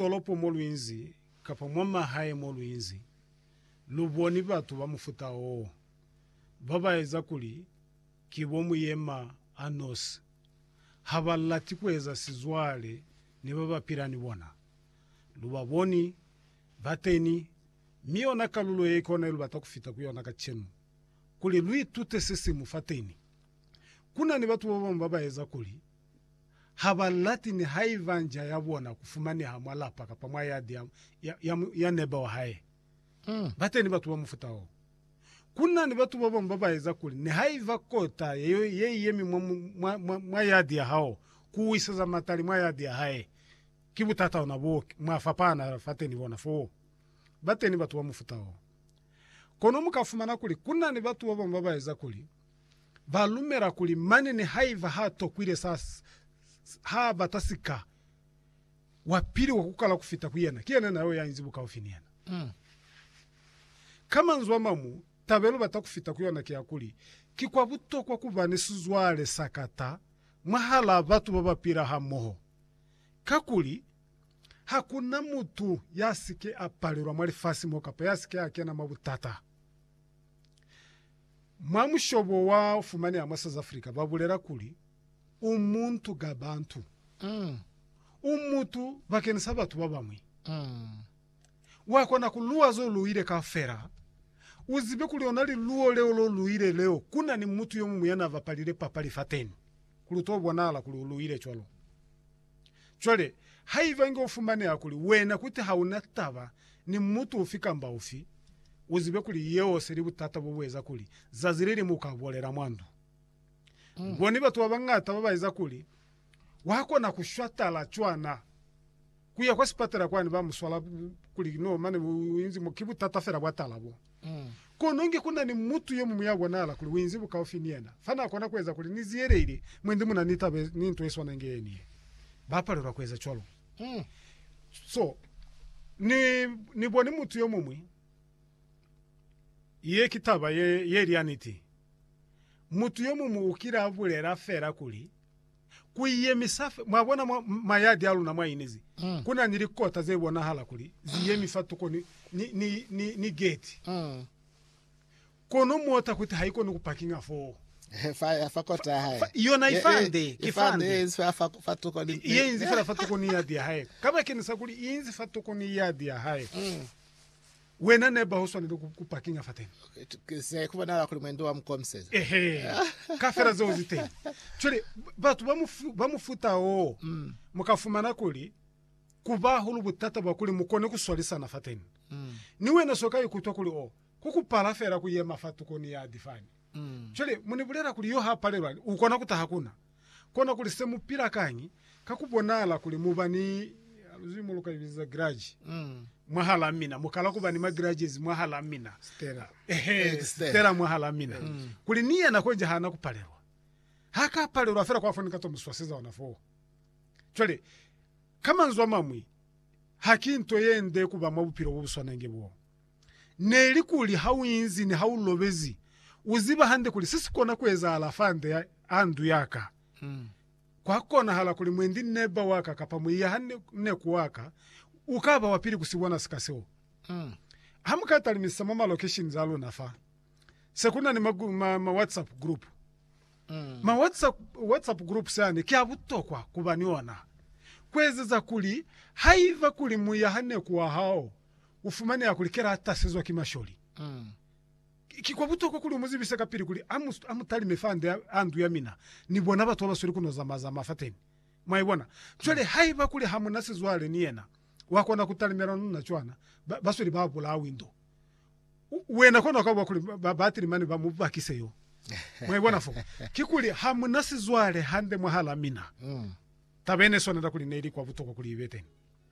tolopo mo lu inzi kapa mwa mahae mo lu inzi, lu boni batu ba mufuta oo, ba ba eza kuli ki bo muyema a nosi. Ha ba lati ku eza sizwale ni ba ba pila ni bona. Lu ba boni ba teñi, mi yona kalulo ye ki ona ye lu bata ku fita ku yona kacenu, kuli lu itute se siñwi fateñi. Ku na ni batu ba bañwi ba ba eza kuli, ha ba lati nihaiba nja ya bona ku fumaneha mwa lapa kapa mwa yadi ya, ya, ya, ya neba wa hae. Ba teni batu ba mufuta woo. Ku na ni batu ba bañwi ba ba eza kuli nihaiba kota ye, ye i yemi mwa, mwa, mwa, mwa yadi ya hao, ku wiseza matali mwa yadi ya hae. Ki butata ona boo, mwa fapana fateni bona foo. Ba teni batu ba mufuta woo. Kono mu ka fumana kuli ku na ni batu ba bañwi ba ba eza kuli ba lumela kuli mane nihaiba ha tokwile sa ha bata sika wa pili wa kukala kufita ku yena, ki yena na yo ya inzi bukaufi ni yena. Mm. Ka manzwi a mamu, taba ilu bata kufita ku yona ki ya kuli ki kwa butokwa kuba ni sizwale sa kata mwahalaa batu ba ba pila hamoho, kakuli ha ku na mutu ya si ke a palelwa mwa lifasi mo kapa ya si ke a kena mwa butata. Mwa mushobo wa fumaneha mwa South Africa ba bulela kuli, U muntu ka bantu. U mutu bakeni sa batu ba bañwi. Wa kona ku luwa zo luwile kaufela. U zibe kuli ona liluwo leo lo luwile leo ku na ni mutu yo muñwi ya na bapalile papali fateni, kuli u to bonahala kuli u luwile cwalo. Cwale, haiba inge ufumaneha kuli wena kuti hauna taba ni mutu ufi kamba ufi, uzibe kuli yeo seli butata bobueza kuli zazi leliñwi uka bolela mwa ndu. Boni batu babañata babaeza kuli wakona kushwa tala cwana, kuya kwa sipatela kwani bamuswala kuli no mane uinzi mo, ki butata fela bwa tala bo. Kono inge ku na ni mutu yo muñwi ya bonala kuli u inzi bukaufi ni yena, fa n'a kona ku eza kuli ni ziyeleile mwe ndi mu na ni taba ni nto ye swana inge ye ni ye. Ba palelwa ku eza cwalo. So, ni, ni boni mutu yo muñwi. Ye ki taba ye, ye li ya niti. Mutu yo muñwi u kile a bulela fela kuli, Ku yemisa fe, mwabona, mwa mayadi a luna mwa inezi, ku na ni likota ze bonahala kuli zi yemi fa tuko ni, ni, ni, ni, ni geti. Kono mota kuti ha i koni ku pakinga foo. Fa, fa kota ya hae. Fa, yona i fa nde, ki fa nde. Ye inzi fela fa, fa tuko ni. Ye inzi fela fa tuko ni yadi ya hae. Kabakeñisa kuli i inzi fa tuko ni yadi ya hae. Wena neba uswaneli ku, ku parkinga fateni. Okay, se kubonahala kuli mwendo wa mukomiseza. Ehe, kafela zeo ziteni. Cwale batu ba mufu, ba mufuta oo, mm. mukafumana kuli kuba hulu butata bwa kuli mukone kuswalisana fateni. Mm. Ni wena so ka ikutwa kuli o, kukupala fela kuyema fa tukoni ya difani. Mm. Cwale munibulela kuli yo ha palelwani, ukona kutaha kuna. kona kuli se mu pila kañi ka ku bonala kuli mu ba ni luzwimo lu ka li biza giraji mwahalaa mina, mu kala ku ba ni magirages mwahalaa mina, Stella. ehe, Eh, Stella. Stella mwahalaa mina, kuli ni yena konji hana ku palelwa, ha ka palelwa fela kwa fo ni ka to mu swaseza ona foo. Cwale, ka manzwi a mañwi, haki nto ye nde ku ba mwa bupilo bo bu swanange boo. neli kuli ha u inzi ni ha u lobezi, u ziba hande kuli se si kona ku ezahala fa nde a ndu ya ka. Kwa konahala kuli mwendi neba wa ka kapa muiya ha ne ku wa ka u ka ba wa pili ku si bona sika seo. Ha mu ka talimisisa mwa malokeshini za luna fa, se ku na ni ma-WhatsApp group. Ma-WhatsApp groups yani ki a butokwa ku ba ni ona, ku ezeza kuli haiba kuli muiya ha ne ku wa hao u fumaneha kuli Kela a tasezwa ki masholi. Ki kwa butokwa kuli u mu zibise kapili kuli a mu talime fa nde a ndu ya mina ni bona batu ba ba sweli ku no zama-zama fateni. Mwa ibona? Cwale, haiba kuli ha mu na sizwale ni yena, wa kona ku talimela nuna cwana, ba, ba sweli ba bulawi ndo. U, wena kono ka bwa kuli ba, ba atile mane ba mu bakise yo. Mwa ibona fo? Kikuli, ha mu na sizwale hande mwahal'a mina. Taba ye ne swanela kuli ne ili kwa butokwa kuli i be teni.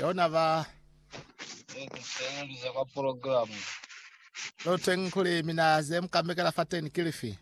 Yona ba Ze ku sebeliza kwa program. Leo teñi kuli mina ze mu ka mekela fateni ki lifi?